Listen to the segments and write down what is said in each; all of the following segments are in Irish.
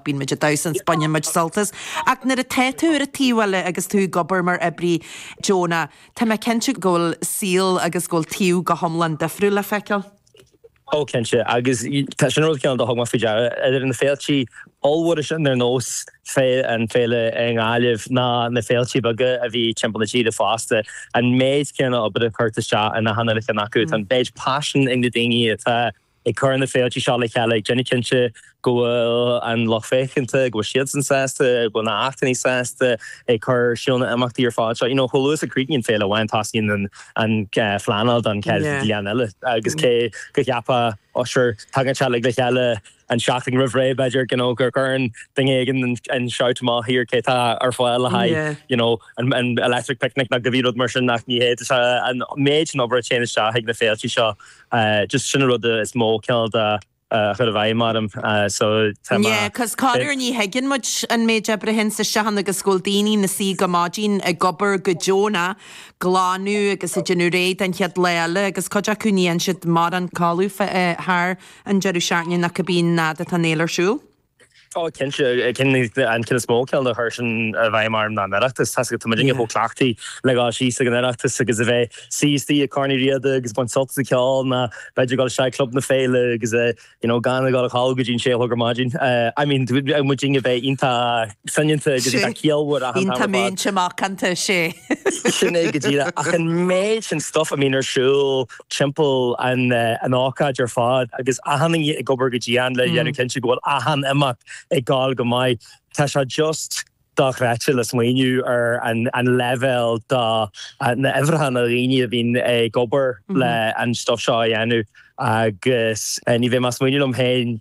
Bíonn muid ag damhsa agus baineann muid sult as. Ach nuair atá tú ar an taobh eile agus tú ag obair mar oibrí deonach, tá mé cinnte go bhfuil saol agus go bhfuil taobh go hiomlán difriúil le feiceáil. Ó cinnte, agus sin an rud céanna a thug mé faoi deara idir na féiltí ollmhóra sin ar nós na hÉalaíon i nGaillimh ná na féiltí beaga a bhíonn timpeall na tíre fosta, an méid céanna oibre curtha isteach in achan cheann acu, an méid paisin ag na daoine atá. Ag cur na féiltí seo le chéile, déanamh cinnte go bhfuil an lucht féachanta, go bhfuil siadsan sásta, go bhfuil na hachtanna sásta ag cur suas na n-imeachtaí ar fad seo. You know, chomh luath is a chríochnaíonn féile amháin, tosaíonn an phleanáil don chéad bhliain eile. Agus cé go gceapfá, ah sure, tagann sé uilig le chéile an seachtain roimh ré, b'fhéidir, you know, gur cuireann duine éigin an shout amach, here, cé atá ar fáil le haghaidh, you know, an Electric Picnic, nó cibé rud mar sin, ach ní hé. Tá an méid sin obair a théann isteach sna féiltí seo just sin an rud is mó cineál de a chur i bhfeidhm orm measaim. Yeah cause corruair ní thuigeann muid an méid oibre sin a dhul isteach ann agus go bhfuil daoine ina suí go maidin ag obair go deonach a' glanadh agus a' déanamh réidh don chéad lá eile agus cuid acu ní fhaigheann siad mórán codladh thar an deireadh seachtaine nó cibé nuair atá an fhéile ar siúl. Ó, cinnte, an ceann is mó cineál a chuir sin i bhfeidhm orm ná an tOireachtas. Tá muid chomh cleachtaí le dhul síos ag an Oireachtas agus a bheith suí istigh ag Corn Uí Riada agus baint sult as an gceol ná b'fhéidir dhul isteach ag Club na Féile agus gan a dhul a chodladh go dtí an sé a chlog ar maidin. I mean, bheadh muid a bheith iontach soineanta agus iontach ciallmhar achan tamall fada. Sé, iontach múinte macánta, sé. Sin é go díreach. Ach an méid sin stuif a mbíonn ar siúl timpeall an ócáid ar fad agus achan duine ag obair go dian le dhéanamh cinnte go bhfuil achan imeacht ag dul go maith. Tá sé just dochreidte le smaoineamh ar an leibhéal do na uimhreacha na ndaoine a bhíonn ag obair le an stuif seo a dhéanamh agus nuair a bhí mé ag smaoineamh liom féin,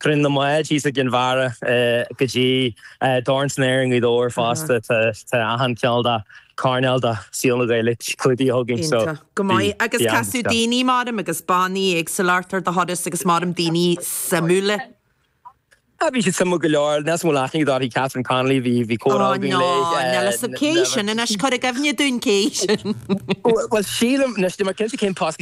Cruinniú na mBád thíos i gCinn Mhara go dtí Dorn San Aer i nGaoth Dobhair fosta. Tá achan cineál de coirnéal de shaol na Gaeilge clúdaithe againn. Iontach go maith. Agus casadh daoine, measaim, agus bannaí ceoil ort ar do thuras agus measaim daoine suimiúla. Ah, bhí siad suimiúil go leor. Níl suimiúil aithne dá rith Catherine Connolly. Bhí comhrá againn léi. Á ná, níl fhios a'm cé sin anois. Cuir i gcuimhne dúinn cé sin. Bhuel, sílim, anois, ní raibh mé cinnte cén post.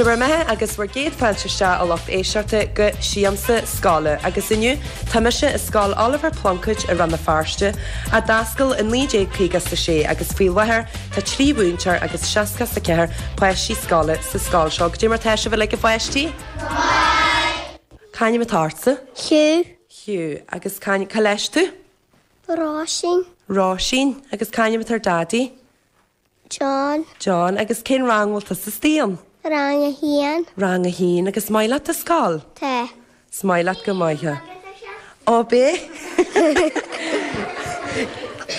Seo bhur mbeatha agus bhur gcéad fáilte isteach a lucht éisteachta go Siamsa Scoile agus inniu tá mise i scoil Oliver Plunkett i Rann na Feirste a d'fhoscail i 1956 agus faoi láthair tá trí mhúinteoir agus 64 páistí scoile sa scoil seo. Cad é mar tá sibh uilig a pháistí? C'ainm atá ortsa? Hugh. Hugh, agus cá, cá leis tú? Róisín. Róisín, Agus cén t-ainm atá ar Daidí? John. John, Agus cén rang a bhfuil tusa istigh ann? Rang a haon. Rang a haon, agus an maith leat do scoil? Tá. Is maith leat go maith é. Ó bé?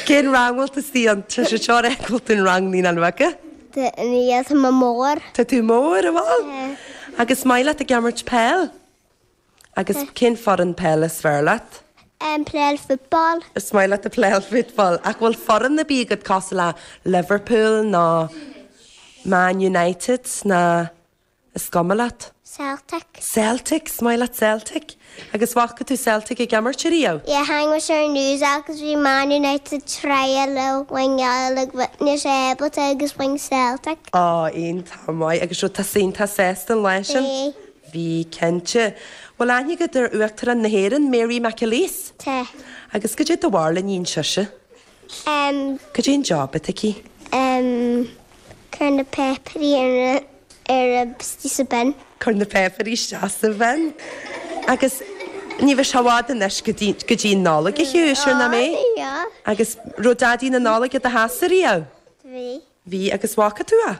Cén rang a bhfuil tú istigh ann? Tá sé seo é bhfuil tú in rang naíonán bheaga? Tá níos mo mór. Tá tú mór an bhfuil? Agus an maith leat ag imirt peil? Agus cén foireann peil is fearr leat? Ag playáil football. Is maith leat ag playáil football. Ach an bhfuil foireann ar bith agat cosúil le Liverpool nó Man United ná is cuma leat? Celtic. Celtic, is maith leat Celtic. Agus an bhfaca tú Celtic ag imirt ariamh? Yeah, tháinig muid ar an news agus bhí Man United ag tryáil le winneáil but ní raibh sé ábalta agus win Celtic. Ó, iontach maith. Agus an raibh tú sásta faoi sin an lá sin? Bhí, cinnte. Bhuel, an aithníonn tú Uachtarán na hÉireann, Mary McAleese. Tá. Agus cad é do bharúil a níonn sise? Ehm. Cad é an job atá aici? Ehm, cur na péipearí ar a, ar a, isteach sa bin. Cur na péipearí isteach sa bhin. Agus ní bheidh sé i bhfad anois go dtí, go dtí an Nollaig, a Hugh, siúr nach mbeidh? Á, á. Agus an raibh Daidí na Nollaig i do theachsa ariamh? Bhí. Bhí, agus an bhfaca tú é?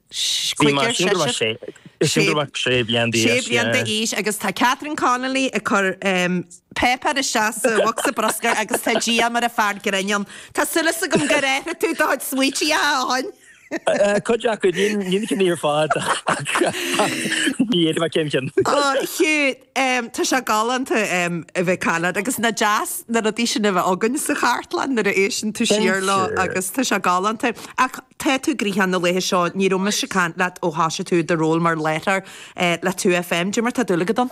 Chuige, ar seisean. Sé bliana d'aois agus tá Catherine Connolly ag cur páipéar isteach sa bhocsa bruscair agus tá Diarmaid ina fhear grinn ann. Tá súil agam gur athraigh tú do chuid smaointe, a Hugh! Cuid acu, ní na cinn ar fad ach ní fhéadfainn a chreidsint. Ó, Hugh, tá sé galánta a bheith ag caint leat agus nach deas na rudaí sin a bheith againn sa chartlann nuair a éisteann tú siar leo agus tá sé galánta. Ach. Tá tú gnoitheach na laethe seo. Ní raibh mise ag caint leat ó thosaigh tú i do ról mar láithreoir le Two FM. Cad é mar tá dúil agat ann.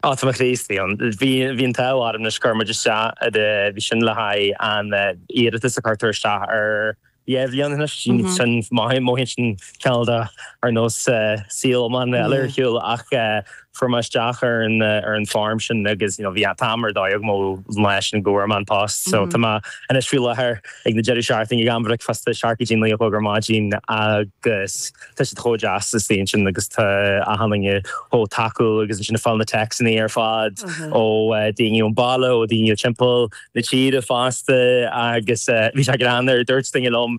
Ó, tá mo chroí istigh ann. Bhí an t-ádh orm anois chuir muid isteach i do, bhí sin le haghaidh an iarratas a cuireadh isteach ar feadh bliain anois. Sin, mothaíonn sin cineál de, ar nós saol iomlán eile ar shiúl ach. Fuair mé isteach ar an ar an form sin agus you know bhí an t-am ar dóigh agam ó shin leis go bhfuair mé an post so tá mé anois faoi láthair ag na deireadh seachtaine ag am bhricfeasta seacht go dtí naoi a chlog ar maidin agus tá siad chomh deas istigh ansin agus tá an team chomh tacúil agus ansin ag fáil na texannaí ar fad ó daoine ón baile ó daoine ó timpeall na tíre fosta agus bhí sé greannmhar dúirt duine liom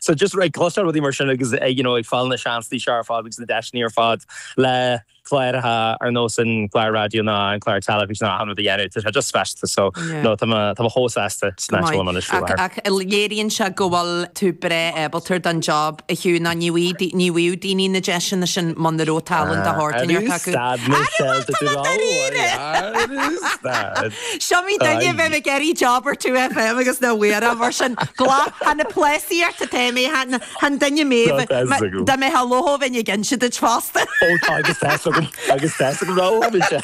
So just ag cloisteáil rudaí mar sin agus ag, you know, ag fáil na seansannaí seo ar fad agus na deiseanna ar fad le cláracha ar nós an gclár raidió ná an clár teilifíse ná achan rud a dhéanamh, tá sé just speisialta. So, Yeah. no, tá mé, tá mé chomh sásta Go hiontach maith. bhfuil mé anois faoi Ach, láthair. ach léiríonn sé go bhfuil tú breá ábalta don job, a Hugh, ná ní bhfuigh dai- ní bhfuigh daoine na deiseanna sin muna raibh tallann de shórt Ah, inteacht acu. stad, Michelle, Go raibh maith agat dáiríre! dúráil. Ara stad. Is iomaí duine a bheadh ag iarraidh job ar 2FM agus nach bhfuair é mar sin glac chan ag plásaíocht atá mé chan duine mé dá mbeifeá lofa bheinn ag inse duit fosta. Ó tá a fhios agam agus tá a fhios agam raibh ann inse.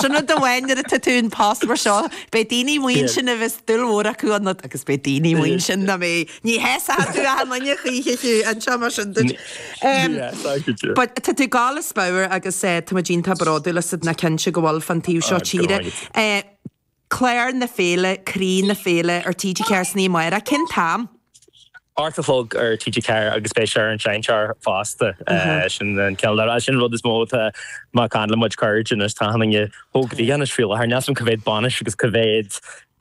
Sin rud amháin nuair atá tú i bpost mar seo beidh daoine amuigh ansin a bheas dúil mhór acu ionat agus beidh daoine amuigh ansin nach mbeidh Ní shásóidh tú achan duine choíche fiú, anseo mar sin duit. Ní shásóidh, leoga. But tá tú ag gabháil as pabhar agus táimid iontach bródúil asat, ná cinnte go bhfuil, fán taobh seo tíre. Go raibh maith agat. Clár na Féile, Croí na Féile ar TG4 san oíche amárach, cén t-am? Ocht a chlog ar TG4 agus beidh sé ar an seinnteoir fosta. Sin an ceann le rá, sin an rud is mó atá má chailleann muid cuid de anois, tá achan duine chomh gnoitheach anois faoi láthair, níl a fhios agam cé mhéad bainis agus cé mhéad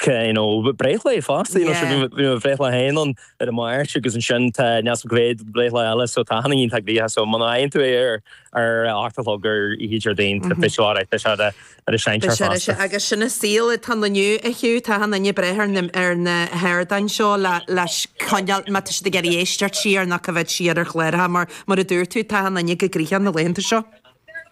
you know, breithlá fosta, you know, sure, bhí, bhí mo bhreithlá féin ann ar an Mháirt agus ansin tá níl a fhios agam cé mhéad breithlá eile, so tá achan duine iontach gnoitheach, so muna bhfaigheann tú é ar, ar a hocht a chlog ar oíche Déardaoin, tá a fhios agat, beidh sé ar an, ar an seinnteoir fosta. Beidh sé ar an seinnteoir agus sin an saol atá ann inniu a thiú, tá achan duine ag brath ar na, ar na hardáin seo le, le coinneáil, má tá siad ag iarraidh éisteacht siar nó coimhéad siar ar chláracha mar, mar a dúirt tú, tá achan duine chomh gnoitheach na laethanta seo.